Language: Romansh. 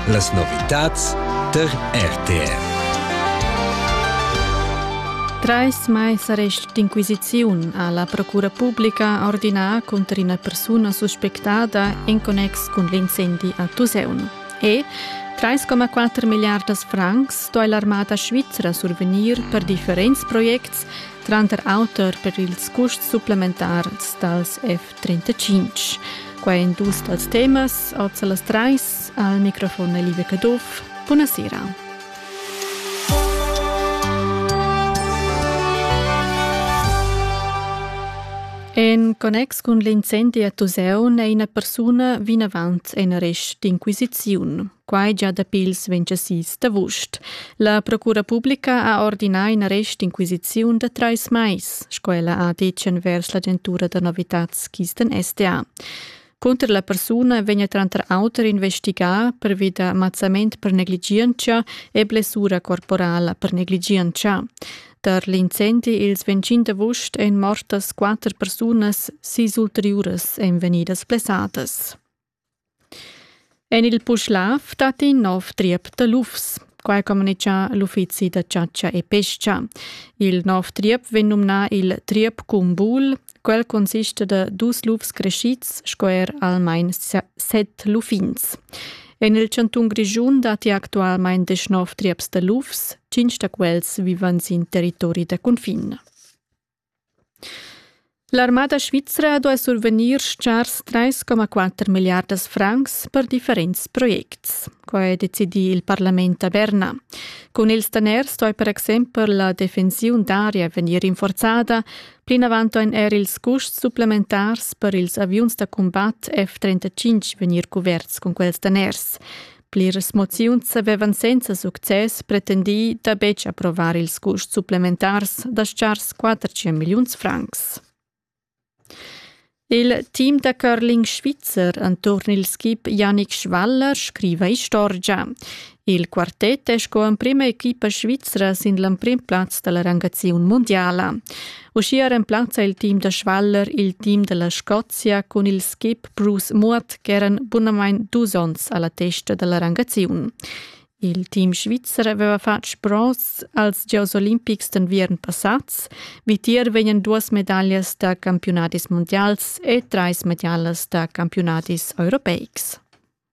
Las novitads tar RTR. Trais mais arrest d'inquisiziun ha la Procura publica ordinà cunter ina persuna suspectada en connex cun l'incendi a Tuseun. E 3,4 milliardas francs sto l'armata svizra survegnir per differents projects, tranter auter per ils custs supplementars dals 35. Quai è dus dals temas. Oz las trais. Al microfon Elida Caduff. Buonasera. En connex cun l'incendi a Tuseun è ina persuna vinavant en arrest d'inquisiziun. Quai già dapi ils 26 d'avust. La Procura publica ha ordinà in arrest d'inquisiziun da trais mais, sco ella ha detg envers l'agentura da novitads Kisten SDA. Cunter la persuna vegn tranter auter investigà pervi da mazzament per negligientscha e blessura corporala per negligientscha. Tar l'incendi ils 25 d'avust èn mortas quatter persunas, sis ulteriuras èn vegnidas blessadas. En il Puschlav datti in nov triep da lufs. Quai communitga l'uffizi da chatscha e pestga. Il nov triep vegn numnà il triep Cumbul. Quel consista da dus lufs crescids sco er almain set luffins. En il chantun Grischun datti actualmain desch nov trieps da lufs, cinc da quels vivan sin territori da cunfin. L'armada svizra duai survegnir stgars 3,4 milliardas francs per differents projects. Quai ha decidì il parlament a Berna. Cun ils daners stoi per exempel la defensiun d'aria vegnir rinforzada. Plinavant ein er ils custs supplementars per ils aviuns da cumbat F-35 vegnir cuverts cun quels daners. Pliras moziuns savevan senza success pretendì da betg approvar ils custs supplementars da schars 400 milliuns francs. Il team da curling svizzer enturn il skip Yannick Schwaller scriva istorgia. Il quartet è sco emprima equipa svizra sin l'emprim plaz da la rangaziun mundiala. Uschia remplazza il team da Schwaller il team da la Scozia cun il skip Bruce Muot ch'eran bunamain dus onns a la testa da la rangaziun. Il team svizzer aveva fatg bronz als Gioss olimpics d'enviern passads. Vitier vegnan duas medaglias da campiunadis mundials e trais medaglias da campiunadis europeics.